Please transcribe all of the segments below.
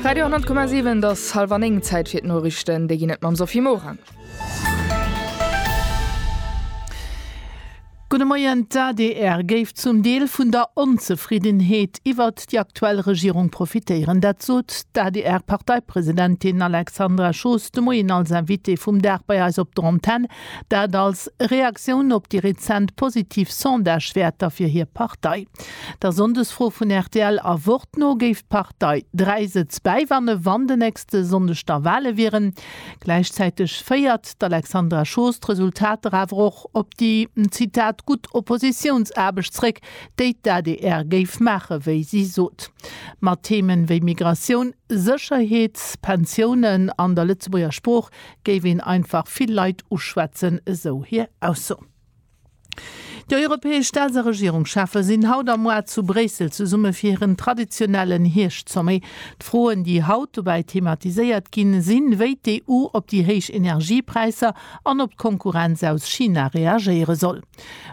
Radio 10,7 et ass halwer 9, Zäit fir d'Noriichten. Déi ginn et mam Sophie Morang. Gudde Moien, D'adr géif zum Deel vun der Onzefriddenheet iwwert déi aktuell Regierung profitéieren. Dat sot d'ADR-Parteipresidentin Alexandra Schoos de Moien als Invitée vum Dag bei eis op der Antenn. Dat als Reaktioun op déi rezent positiv Sondagewäerter fir hir Partei. Der Sonndesfro vun rtl a Wort no géif d'Partei dräi Sëtz bäiwanne wann de nächste Sonndeg da Wale wieren. Gläichzäiteg féiert d'Alexandra Schoos d'Resultater awer och op déi, Zitat, gutt Oppositiounsaarbecht zeréck, déi d'ADR géif maachen, wéi si sot. Mat Themen wéi Migratioun, Sécherheet, Pensiounen an der Lëtzebuerger Sprooch géif een einfach vill Leit uschwätzen, esou hir Ausso. Déi europäesch Staats a Regierungscheffe sinn haut am Mois zu Bréissel zesumme fir hiren traditionellen Hierscht-Sommet. D'Froen, déi haut dobäi thematiséiert ginn, sinn, wéi d'EU op déi héich Energiepräisser an op d'Konkurrenz aus China reagéiere soll.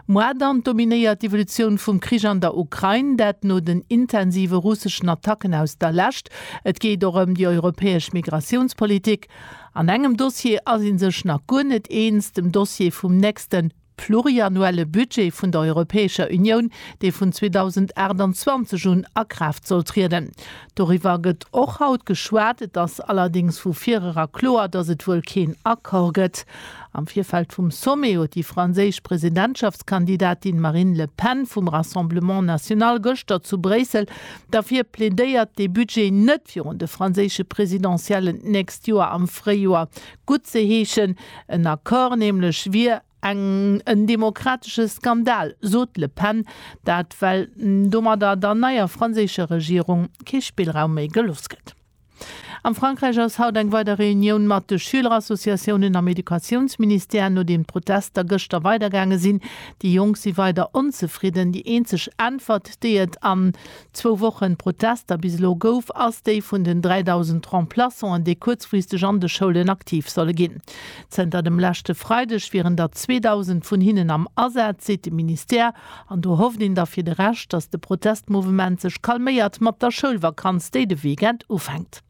Mois dann dominéiert d'Evolutioun vum Krich an der Ukrain, dat no den intensive russeschen Attacken aus der Lescht. Et geet och ëm déi europäesch Migratiounspolitik. An engem Dossier ass ee sech nach guer net eens, dem Dossier vum nächste pluriannuelle Budget vun der Europäescher Unioun, dee vun 2028 un a Kraaft soll trieden. Doriwwer gëtt och haut geschwat. Et ass allerdéngs vu virera kloer, datt et wuel keen Accord gëtt. Am Virfeld vum Sommet huet déi franséisch Presidentschaftskandidatin Marine Le Pen vum Rassemblement National gëschter zu Bréissel Derfir plädéiert dee Budget net virun de franséische Presidentiellen d'nächst Joer am Fréijoer guttzeheeschen. En Accord nämlech wier en demokratesche Skandal, sot d'Le Pen. Dat well domadder der neier franséischer Regierung kee Spillraum méi geloss gëtt. Am Frankräich ass haut eng weider Reunioun mat de Schülerassociatiounen am Educatiounsministère, nodeem d'Protester gëschter weidergaange sinn. Déi Jonk si weider onzefridden. Déi eenzeg Äntwert, déi et an zwou Woche Protester bis elo gouf, ass déi vun den 3.000 Remplaçanten, déi kuerzfristeg an de Schoulen aktiv solle ginn. Zënter dem leschte Freideg wieren der 2.000 vun hinnen am Asaz, seet de Ministère. An do hofft een da fir de Rescht, dass de Protestmouvement sech calméiert mat der Schoulvakanz, déi de Weekend ufänkt.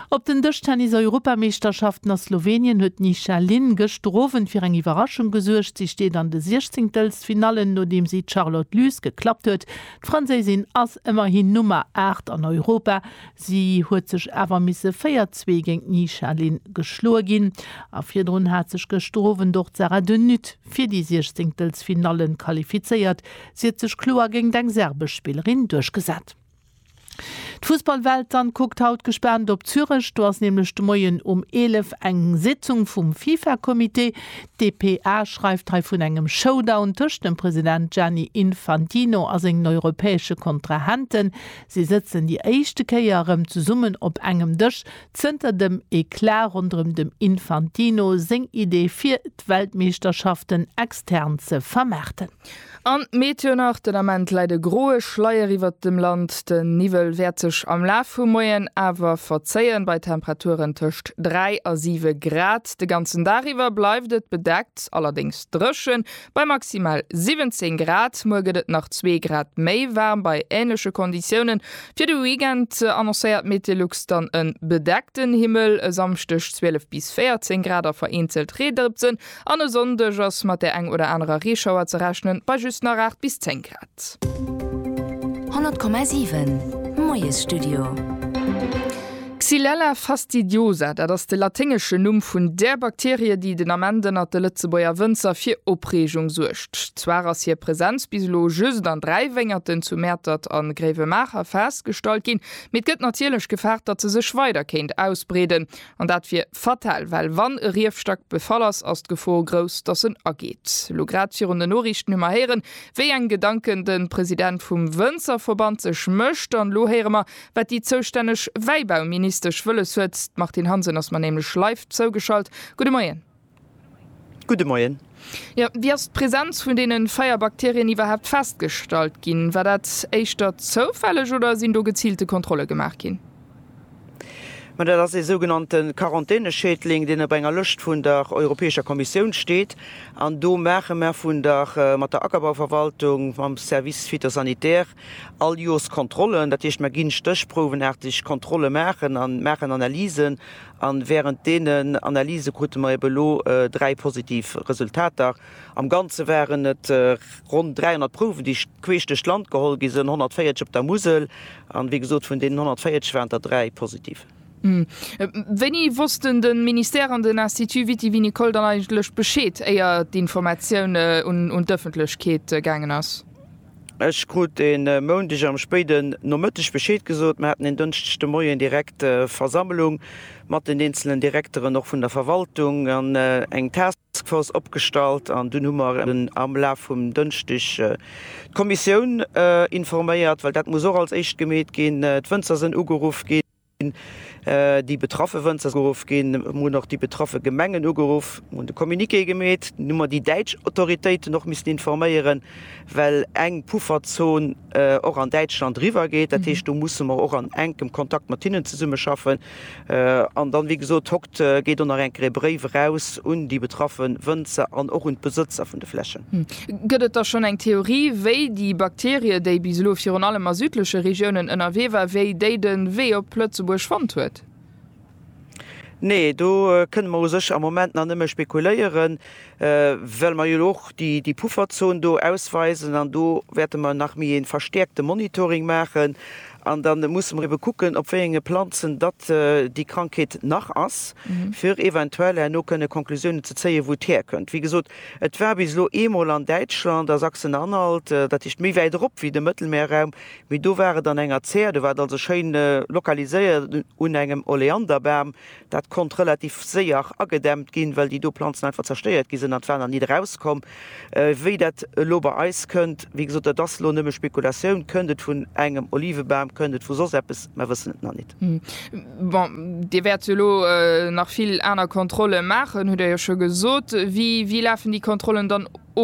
Op den Dëschtennis-Europameeschterschaften a Slowenien huet d'Nisha Lin gëschter Owend fir eng Iwwerraschung gesuergt. Si steet an de Siechzéngtelstfinallen, nodeem si d'Charlotte Lys geklappt huet. D'Franséisin ass ëmmerhin Nummer 8 an Europa. Si huet sech awer misse véier Zwee géint d'Nisha Lin geschloe ginn. A virdrun hat sech gëschter Owend och d'Sara de Nutte fir déi Siechzéngtelsfinalle qualifizéiert, si huet sech kloer géingt eng serbesch Spillerin duerchgesat. D'Fussballwelt dann kuckt haut gespaant op Zürech, do ass nämlech de Moien um 11 eng Sitzung vum Fifa-Comité. Dpa schreift hei vun engem Showdown tëscht dem President Gianni Infantino a sengen europäesche Kontrahenten. Si sëtzen déi éischte Kéier erëm zesummen op engem Dësch Zënter dem Eclat ronderëm dem Infantino seng Idee fir d'Weltmeeschterschaften extern ze vermaarten. An d'Meet jo nach, den Ament läit e groe Schleier iwwert dem Land. Den Niwwel wäert sech am Laf vum Moien awer verzéien, bei Temperaturen tëscht 3 a 7 Grad. De ganzen Dag iwwer bleift et bedeckt, allerdéngs dréchen. Bei maximal 17 Grad. Muer gëtt et nach zwee Grad méi waarm bei änleche Konditiounen. Fir de Weekend annoncéiert Meteolux dann e bedeckten Himmel, e Samschdeg 12 bis 14 Grad a vereenzelt Reedrëpsen an e Sonndeg ass mat der eng oder anerer Reeschauer ze rechnen, bei just nach 8 bis 10 Grad. Paket. 100,7 Moiesstudio. Xylella fastidiosa, dat ass de laténgeschen Numm vun där Bakterie, déi den Ament ënnert de Lëtzebuerger Wënzer fir Opreegung suergt. Zwar ass hir Presenz bis elo just an dräi Wéngerten zu Mäertert a Gréiwemaacher festgestallt ginn, mee et gëtt natierlech gefaart, datt se sech weider kéint ausbreeden. An dat wier fatal, well wann e Riefstack befall ass, ass d'Gefor grouss, datt en ageet. Elo grad virun den Noriichten hu mer héieren, wéi eng Gedanken de President vum Wënzerverband sech mécht. An elo héiere mer, wat déi zoustänneg Wäibauministesch wëlles huet. D'Martine Hansen ass mer nämlech live zougeschalt. Gudde Moien. Gudde Moien. Jo, wéi ass d'Präsenz vun deene véier Bakterien iwwerhaapt festgestallt ginn? War dat éischter zoufälleg oder sinn do geziilte Kontrolle gemaach ginn? Ma dat ass ee sougenannte Quarantäneschädling, deen op enger Lëscht vun der Europäescher Kommissioun steet. An do maache mer vun der mat der Ackerbauverwaltung, mam Service phytosanitaire All Joers Kontrollen, dat heescht mer ginn stéchprouwenaarteg Kontrolle maachen a maachen Analysen. An während deenen Analyse krute mer eben elo dräi positiv Resultater. Am Ganze waren et ronn 300 Prouwen, déi queesch duerch d'Land geholl gi sinn, 140 op der Musel. An wéi gesot, vun deenen 140 waren der dräi positiv. Wéini wossten de Ministère an den Institut Viti-Vinicole dann eigentlech Bescheed, éier d'Informatioun un d'Ëffentlechkeet gaangen ass? Ech krut e Moundeg am spéiden Nomëtteg Bescheed gesot. Mer haten en Dënschdeg de Moien direkt Versammlung mat den eenzelen Direkteren, och vun der Verwaltung, an eng Taskforce opgestallt. An dunn hu mer am Laf vum Dënschdeg d'Kommissioun informéiert, well dat muss och als éischt gemeet ginn. D'Wënzer sinn ugeruff ginn. Déi betraffe Wënzer geruff ginn. Mir hunn och déi betraffe Gemengen ugeruff, mir hunn de Communiqué gemeet. Dunn hu mer déi däitsch Autoritéiten och missen informéieren, well eng Pufferzon och an Däitschland eriwwergeet. Dat heescht, do musse mer och an enkem Kontakt mat hinnen zesummeschaffen. An dann, wéi gesot, hockt, geet och nach eng Kéier e Bréif eraus un déi betraffe Wënzer an och un d'Besëtzer vun de Flächen. Gëtt et da schonn eng Theorie, wéi déi Bakterie, déi bis elo virun allem a südleche Regiounen ënnerwee war, wéi déi de Wee op Lëtzebuerg fonnt huet? Nee, do kënne mer u sech am Moment nach nëmme spekuléieren, well mer jo elo och déi Pufferzon do ausweisen. An do wäerte mer nach méi ee verstäerkte Monitoring maachen. An da musse mer ebe kucken, op wéi enge Planzen datt déi Krankheet nach ass, fir eventuell herno kënne Conclusiounen ze zéien, wou et härkënnt. Wéi gesot, Et war bis elo eemol an Däitschland, a Sachsen-Anhalt, dat heescht méi wäit erop wéi de Mëttelmeerraum, mee do war et an enger Zär, do war et also schéin lokaliséiert un engem Oleanderbam. Dat konnt relativ séier agedämmt ginn, well déi do Planzen einfach zerstéiert gi sinn an d'Waner nit erauskomm. Wéi dat elo bei eis kënnt, wéi gesot, dat ass elo nëmme Spekulatioun, kënnt et vun engem Olivebam, kënnt et vu soss eppes, mer wëssen et nach nit. Test. Bon, Dir wäert jo elo nach vill aner Kontrolle maachen, hutt Der jo scho gesot. Wéi lafen déi Kontrollen dann of?